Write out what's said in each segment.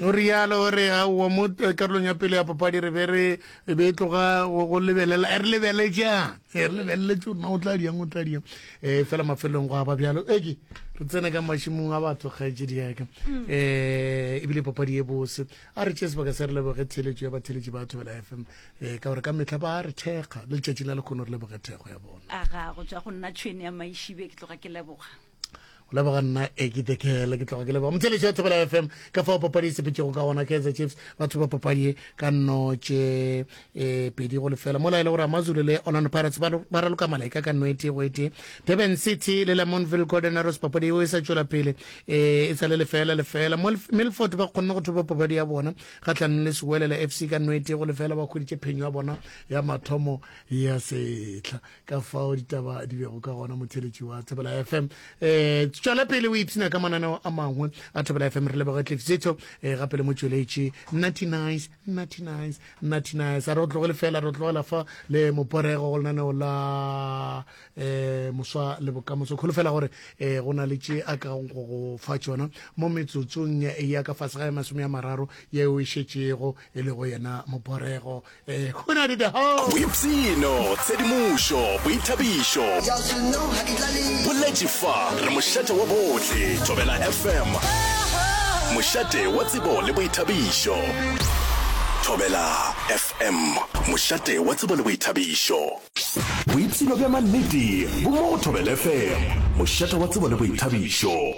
o rialo o re aowa mo eh, karolong ya pele ya papadi re be re be tloga go lebelela eh, re lebeletšang eh, re lebeleletse gore na o tla diang o tla diang um fela mafelelong go aba bjalo eke re tsene ka mašimong a batho kgaetse diaka um ebile papadi e bose a re tšee sebaka se re leboge theletso ya batheletši ba thobela f m um ka gore ka metlha ba re thekga le letšatši la lekgono re leboge thekgo ya bona aga go tswa go nna tšhwene ya maišibe ke tloga ke leboga leboga nna ekete kele ke tloga ke leboga mothelešo ya thobela fm ka fao papadi e sepetšego ka gona kaizer chiefs ba thuba papadi e ka nnotše e pedi go lefela mola e le gore amazulu le orlando pirates ba raloka malaika ka nno e tee go e tee durban city le lamonville golden arrows papadi eo e sa tšwela pele e, e sa le lefela lefela milford ba kgonne go thuba papadi ya bona kgatlhanong le sewelela fc ka nno e tee go lefela ba kgweditše phenyo ya bona ya mathomo ya setlha ka fao ditaba di bego ka gona motheletši wa thobela fm um eh, tšwela pele o ipshina ka mananeo a mangwe a thobela fm re leboge tlefsetso um eh, gape le motšweletši natty nice natty nice natty nice a re o tlogele fela re o tlogela fa le moporego go lenaneo la um moswa le bokamoso kgolo fela gore um go na le tše a ka go go fa tšona mo metsotsong ya ka fase ga ya masome ya mararo yeo e šetšego e lego yena moporego Eh, go na le the house. boipshino tshedimošo boithabišo boletše fa re mošate wa bohle thobela fm mošate wa tsebo le boithabišo thobela fm mošate wa tsebo le boithabišo boipshino bja mannete bo mo go thobela fm mošate wa tsebo le boithabišo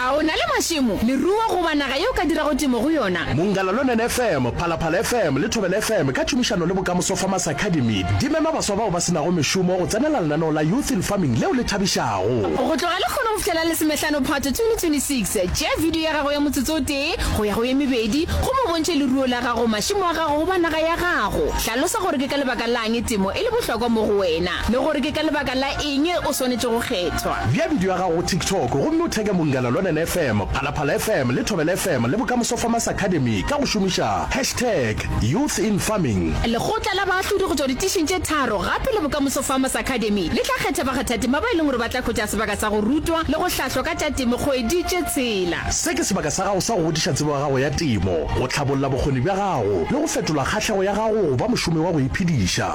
a o na le mašemo leruo goba naga ye o ka dirago temo go yona Mongalalonen FM, Phalaphala FM le Thobela FM ka tšhomišano le Bokamoso Farmers Academy di mema baswa bao ba se nago mešomo go tsenela lenaneo la Youth in Farming leo le thabišago. Go tloga Lekgono go fihlela Lesomehlano Phato 2026, tšea bidio ya gago ya motsotso o tee go ya go ye mebedi gomme o bontšhe leruo la gago, mašemo a gago goba naga ya gago. Hlalosa gore ke ka lebaka la'ng temo e le bohlokwa mo go wena le gore ke ka lebaka la Eng e o swanetše go kgethwa? Bea bidio ya gago go TikTok gomme o theke Mongala Lwanene FM, Phalaphala FM le Thobela FM le Bokamoso Farmers Academy ka go šomiša hashtag Youth in Farming. Lekgotla la baahlodi go tšwa ditišing tše tharo gape le Bokamoso Farmers Academy le tla kgetha bakgathatema ba e leng gore ba tla hwetša sebaka sa go rutwa le go hlahlwa ka tša temo kgwedi tše tshela. Se ke sebaka sa gago sa go godiša tsebo ya gago ya temo, go hlabolla bokgoni bja gago le go fetola kgahlego ya gago go ba mošomi wa go iphediša.